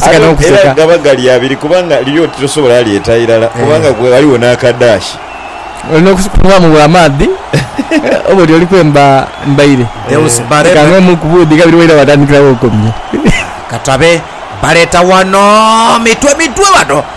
Aye era gaba gali abiri kubanga liri oti tosobola lyeta irala kubanga ghaligho n'akadaashi. Olina okukunhaamu bwa maadhi oba oti oli kwemba mbaire. Deus Barebe. Eka ng'omu ku buudhi kabiri waira waatandikira w'okomye. Katabe, baleeta wano mitwe mitwe bano.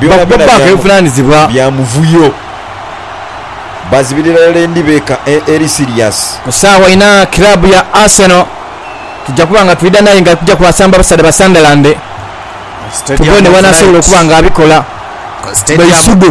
byonabyona bya muvuyo. Bazibirira irala endi beeka eri siriyasi. Ku saagha inha kiraabu ya Arsenal tuja kuba nga twidha n'aye nga kuja kwasamba basaadha ba Sunderland tubone bw'anaasobola okuba nga abikola. Baisudhu.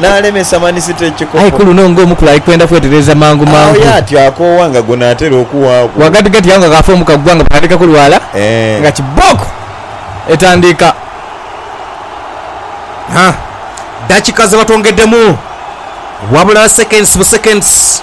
n'alemesa Manisita ekikopo. Aye ku luno ng'omukulu ali kwenda kwetereeza mangu mangu. Agho y'atyo akoowa nga gona atera okuwaaku. Ghagatigati agho nga kaafa omu kagugha nga batandika kulwala, nga kibooko etandiika. Ha, dakika zebatwongeddemu, wabula seconds bu seconds.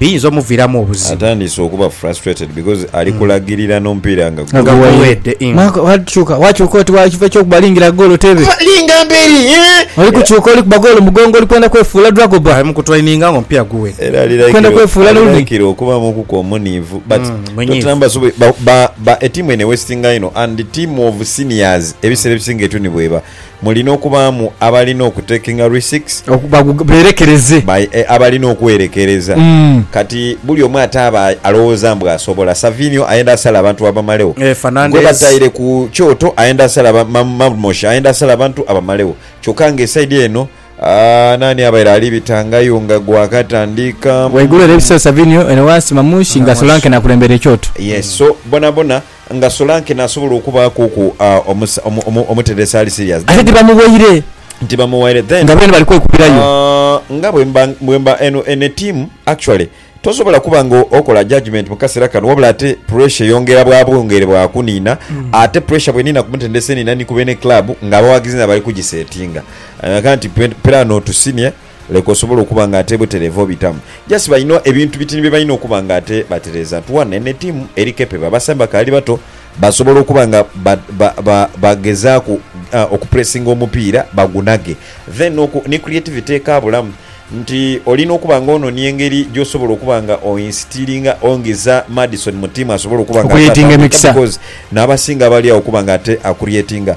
biyinza omuviiramu obuzibu. Atandise okuba frustrated because ali kulagirira n'omupiira nga Nga guweedde. guweedde, ing. Mark wakyuka wakyuka oti wa kiva eky'okuba lingira goolo tebe. Fa linga mberi eeh. Oli kukyuka oli kuba goolo mugongo oli kwenda kwefuula Dragobah. Ali mu kutraininga nga omupiira guweedde. Era ali Kwenda like kwefuula ali Rooney. like okubaamuku ku omuniivu but Mm, munyiivu. Tottenham basoboye ba ba ba etiimu eno ewesitingayo inho and tiimu of seniors ebiseera ebisinga etyo ni bweba. Mulina okubaamu abalina okutekinga risiks. Okubagh, beerekereze. By, e, abalina okwerekereza. Mm. Kati buli omu ate aba alowooza mbu asobola. Savinio ayenda asale abantu abamaleo. E, Fernandez. Gwe bataire ku kyoto ayenda asale aba, ma, Marmosha ayenda asale abantu abamaleo. Kyokka nga esaidi eno, aah, naani abaire ali bitangayo nga gwakatandika? Ghaigulu ere ebisero Savinio, ere ghansi Marmush, nga Solanke n'akulembera ekyoto. Yes. So, bonabona. Nga Solanke nasobola okubaaku ku omuteera esaali serious then. Ate tibamuwaire. Tibamuwaire then. Nga beene bali kwekubirayo. Aah nga bwemba eno eno etiimu actually tosobola kuba nga okola judgement mu kasera kano wabula ate pressure eyongera bwa bwongere bwa kuniina ate pressure bweniina ku mutendesi eniina ni ku beene club nga abawagizi nabo bali kugisetinga. Kati piraano to senior. Leka osobole okuba nga ate butereevu obitamu. Just balina ebintu bitini bye balina okuba nga ate batereeza. Tuan eno etiimu eri capable. Abasambi bakaali bato, basobola okuba nga ba, ba, ba, bagezaaku okupressinga omupiira bagunage. Then n'oku, ni creativity ekaabulamu. Nti olina okuba nga ononia engeri gy'osobola okuba nga oinstilinga, ongiza Maddison mu tiimu asobole okuba nga ate Okureatinga atambulika emikisa. because n'abasinga abali agho okuba nga ate akureatinga.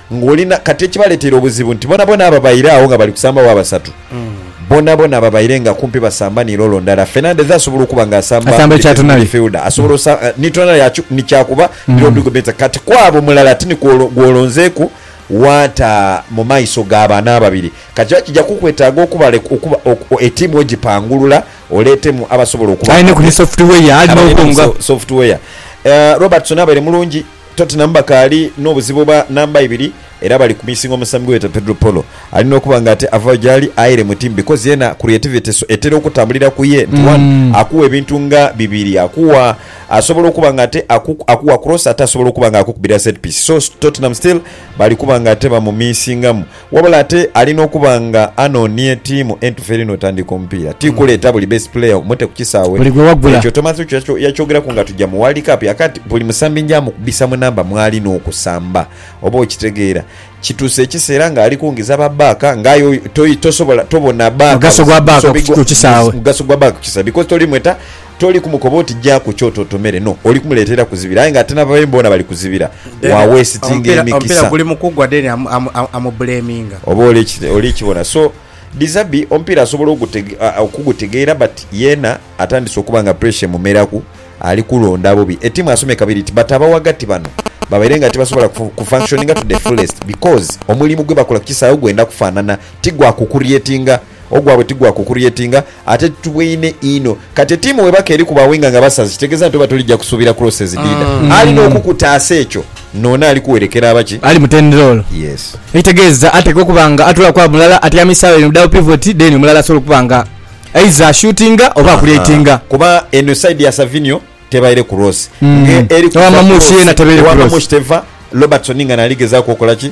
Ng'oli na. Kati ekibaleteire obuzibu nti bonabona ababaire agho nga bali kusamba wa basatu, bonabona ababaire nga kumpi basamba ni loolo ndala, Fernandez asobola okuba nga asamba Asamba oti ekya first tonali. midfielder, asobola osa, ni tonali yakyu, ni kyakuba ni Rodrigo Bentancur. Kati kw'abo mulala ti ni kw'olo, gw'olonzeeku w'ata mu maiso ga bano ababiri. Kati era kija kukwetaaga okubale, okuba, oku, o, etiimu ogipangulula oleetemu abasobola okuba Aye ni nga ku ni be, software, ali abaire ni n'okwonga. so, software. Eh, Robertson abaire mulungi. Tottenham bakaali n'obuzibu obwa namba ibiri era bali kumisinga omusambi gwebeeta Pedro Porro ali n'okuba nga ate avaayo gyali aere mu ttiimu because yeena creativity etera okutambulira ku ye nti one akuwa ebintu nga bibiri akuwa asobola okuba nga ate akuwa cross ate asobola okuba nga akukubira set piece so Tottenham still bali kuba nga ate bamumisingamu. Wabula ate ali n'okuba nga anoonie ttiimu entufu eri n'otandika omupiira. Ti kuleeta buli best player omute ku kisaawe. Ekyo Thomas Okyo yakyogeraku nga tuja mu World Cup yaka nti, Buli musambi nja mukubisa mu namba mw'ali n'okusamba. Oba okitegeera? Kituuse ekiseera ng'ali kungiza ba baaka nga aye tosobola, tobona baaka buzibu, mugaso gwa baaka ku kisaawe because toli mweta. Toli kumukoba oti ja ku kyoto otomere, no, oli kumuleetera kuzibira, aye nga ate n'ababe boona bali kuzibira. Wa wesitinga emikisa. Omupiira guli mu kugwa then amublaminga. Oba oli kibona. So, Dizabi omupiira asobola okugutegeera but yeena atandise okuba nga pressure emumeraku, ali kulonda bobi. Etiimu asomye kabiri nti but abaghagati bano babaire nga tibasobola ku functioninga to the fullest because omulimu gwebakola ku kisaawe gwenda kufaanana ti gwa ku creatinga Ogwabwe ti gwa ku kuryetinga ate titubweine inho. Kati etiimu bwebaka eri ku ba winga nga basazi kitegeeza nti oba tulija kusuubira cross ezidiida? Alina okukutaasa ekyo n'ono ali kuwerekera aba ki? Ali mutendera olwo. Yes. Ekitegeeza atekwa okuba nga atoolaku agho mulala atyamisa agho eno mu daawo pivoti then omulala asobola okuba nga either ashutinga oba akuryetinga. Kuba eno side ya Savinio tebaire cross. Nga eri kuva cross, owa Mamushi teva, Robertson nga naali gezaaku okola ki?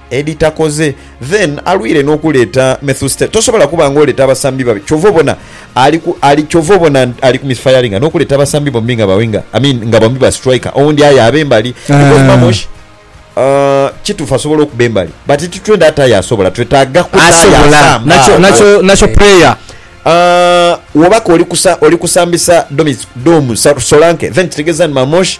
edhitakoze then alwire nokuleta methustel tosobola kuba nga oleta abasambi babi kyova obona ali ku ali kyova obona ali ku misfiringa nokuleta abasambi bombi nga ba winger i mean nga bombi ba striker owundi aye abe mbali because mamosh Eeh. aah kitufu asobola okuba embali but titwenda ati aye asobola twetaga kuta aye Asobola asamba nakyo nakyo aah nakyo player. aah wobaka oli kusa oli kusambisa domis domu sa solanke then kitegeza ni mamosh.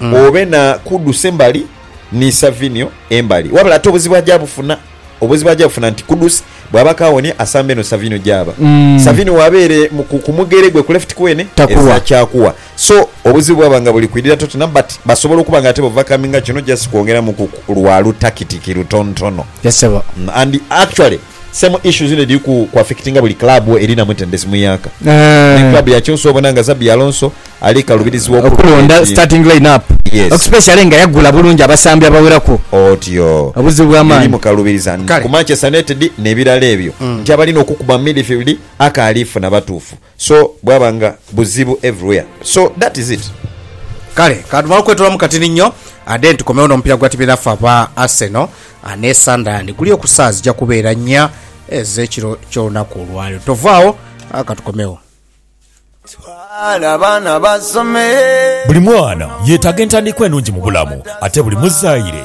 obe na Kudus embali ni Savinio embali. Wabula ate obuzibu aja bufuna, obuzibu aja bufuna nti Kudus bwaba akawonia asamba eno Savinio gyaba. Savinio waba ere ku mugere gwe ku left kwene ezira kyakuwa. So obuzibu bwaba nga buli kwidhira Tottenham but basobola okuba nga ate bo vakaminga kino just kwongeramu ku lwa lu takitiki lutontono. And actually. Same issues dhino edhiri ku affectinga buli club erina mutendesi muyaaka. Ni club ya Chelsea obona nga Xabi Alonso ali kalubirizibwa okulonda starting line up especially nga yagula bulungi abasambi abaweraku. Otyo. Obuzibu bwa maanhi. Eri mukalubiriza ku Manchester United nebirala ebyo nti abalina okukuba mu midfield akaali funa batuufu. So bwaba nga buzibu everywhere so that is it. Kale katumale okwetolamu katini nnyo then tukomewo n'omupiira gwa tiimu dhaffe aba Arsenal ne Sunderland guli oku saawa zija kubeera nnya ez'ekiro ky'olunaku olwaleero. Tovaawo katukomewo. Twala abaana basome. Buli mwana yetaga entandikwa enungi mubulamu ate buli muzaire